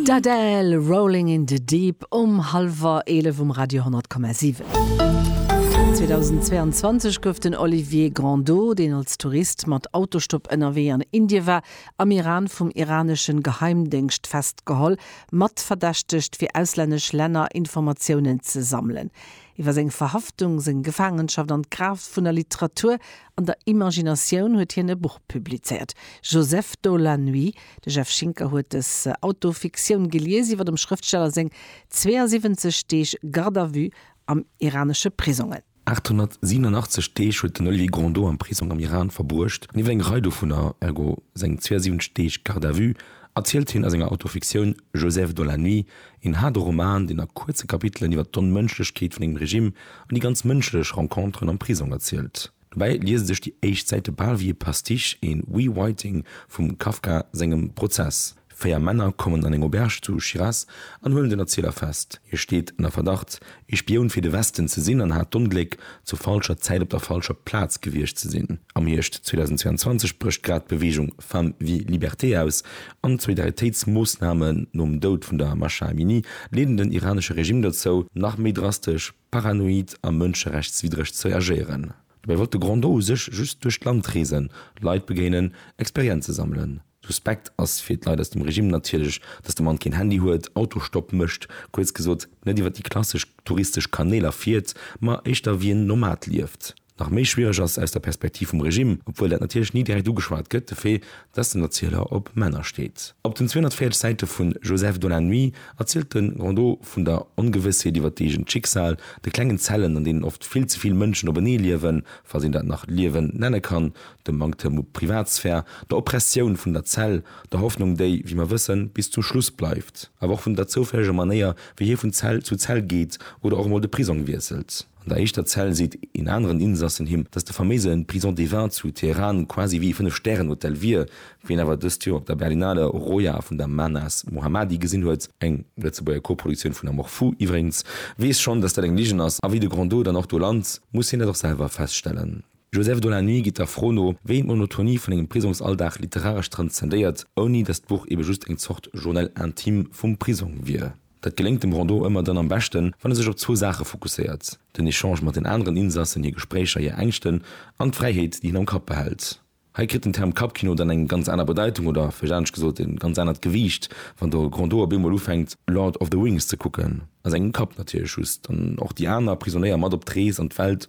D'Adele, Rolling in the Deep um hallwer 11 um Radio 10,7. 2022 gouf den Olivier Grandeau, deen als Tourist mat Autostopp ënnerwee an Indie war, am Iran vum iraneschen Geheimdéngscht festgeholl, mat verdächtegt fir auslännesch Länner Informatiounen ze sammelen. Iwwer seng Verhaftung, seng Gefaangenschaft an d'Kraaft vun der Literatur An der Imaginatioun huet hien e Buch publizéiert, Joseph dans la nuit. De Jeff Schinker huet dës Autofiktioun gelies iwwer dem Schrëftsteller seng 72 Deeg Garde à vue am iranesche Prisongen. 887 Deeg huet den Olivier Grandot am Prisong am Iran verbruecht. An iwwer eng Rei dovunner, ergo seng 72 Deeg Garde à vue, erzielt hien a senger Autofiktioun Joseph dans la nuit, Een haarde Roman, deen a kuerze Kapitelen iwwer d'Onmënschlechkeet vun engem Regime an déi ganz mënschlech Renconteren am Prisong erzielt. Dobäi liese sech déi éischt Säite bal wéi e Pastiche, een Rewriting vum Kafka sengem Prozess. Véier Männer kommen an eng Auberge zu Shiraz an huelen den Erzieler fest. Hie steet ënner Verdacht, Ee Spioun fir de Westen ze sinn an hat d'Ongléck, zur falscher Zäit op der falscher Plaz gewiescht ze sinn. Am Hierscht 2022 brécht grad d'Beweegung Femmes, Vie, Liberté aus an d'Solidaritéitsmoossnamen nom Doud vun der Mahsa Amini leeden den iranesche Regime dozou, nach méi drastesch, paranoid a mënscherechtswiddreg ze reagéieren. Dobäi wollt de Grand Do u sech just duerch d'Land reesen, Leit begéinen, Experienze sammelen. Suspekt ass fir d'Leit aus dem Regime natierlech, dass de Mann keen Handy huet, Autostopp mécht, kuerz gesot, net iwwer déi klassesch touristesch Kanéler fiert, ma éischter wéi en Nomad lieft. Nach méi schwiereg ass aus der Perspektiv vum Regime, obwuel dat natierlech ni direkt ugeschwat gëtt, de Fait, dass den Erzieler op Männer steet. Op den 240 Säite vu Joseph dans la nuit erzielt de Rondeau vun der Ongewëssheet iwwer d'eegent Schicksal, de klengen Zellen, an deenen oft vill ze vill Mënschen openee liewen, falls een dat nach Liewen nenne kann, dem Manktem u Privatsphär, der Oppressioun vun der Zell, der Hoffnung déi, wéi mer wëssen, bis zum Schluss bleift, awer och vun der zoufälleger Manéier wéi hie vun Zell zu Zell geet oder och emol de Prisong wiesselt. An der éischter Zell seet een aneren Insassen him, datt de faméise Prison des Vins zu Teheran quasi wéi ee Fënnef Stären Hotel wier. Wien awer dëst Joer op der Berlinale Roja vun der Mahnaz Mohammadi gesinn huet, eng Lëtzebuerger Koproduktioun vun Amour Fou iwwregens, weess schonn, datt dat eng Ligen ass, a wéi de Grandot dann och do lant, muss hien dat och selwer feststellen. Joseph de la Nuit geet der Fro no, wéi d'Monotonie vun engem Prisongsalldag literaresch transzendéiert, ouni datt d'Buch ebe just eng Zort Journal intime vum Prisong wier. Dat geléngt dem Rondeau ëmmer dann am beschten, wann e sech op zwou Saache fokusséiert, den Echange mat den aneren Insassen, hir Gespréicher, hir Ängschten an d'Fräiheet, déi hien am Kapp behält. Hei kritt den Term Kappkino dann eng ganz aner Bedeitung oder, vläicht anescht gesot, e ganz anert Gewiicht, wann de Rondeau op eemol ufänkt, Lord of the Rings ze kucken, a sengem Kapp natierlech just, an och déi aner Prisonéier mat op d'Rees an d'Welt,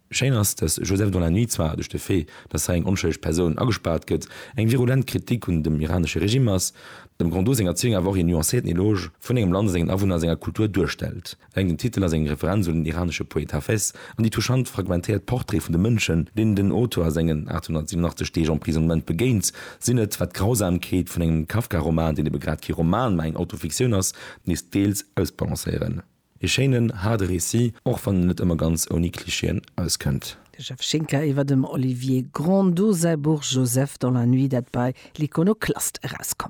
Schéin ass, dass Joseph dans la nuit zwar duerch de Fait, dass hei eng onschëlleg Persoun agespaart gëtt, eng virulent Kritik un dem iranesche Regime ass, dem Grondot seng Erzéiung awer och een nuancéierten Eloge vun engem Land a sengen Awunner a senger Kultur duerstellt. Eleng den Titel ass eng Referenz un den iranesche Poet Hafez an déi touchant fragmentéiert Portraite vun de Mënschen, deenen den Auteur a sengen 887 Deeg Emprisonnement begéint, sinn et, wat d'Grausamkeet vun engem Kafka-Roman, deen ebe grad kee Roman, mä eng Autofiktioun ass, nees deels ausbalancéieren. Ee schéinen, haarde Récit, och wann en net ëmmer ganz ouni Klischeeën auskënnt. De Jeff Schinker iwwer dem Olivier Grondaut säi Buch Joseph dans la nuit, dat bei L'Iconoclaste erauskoum.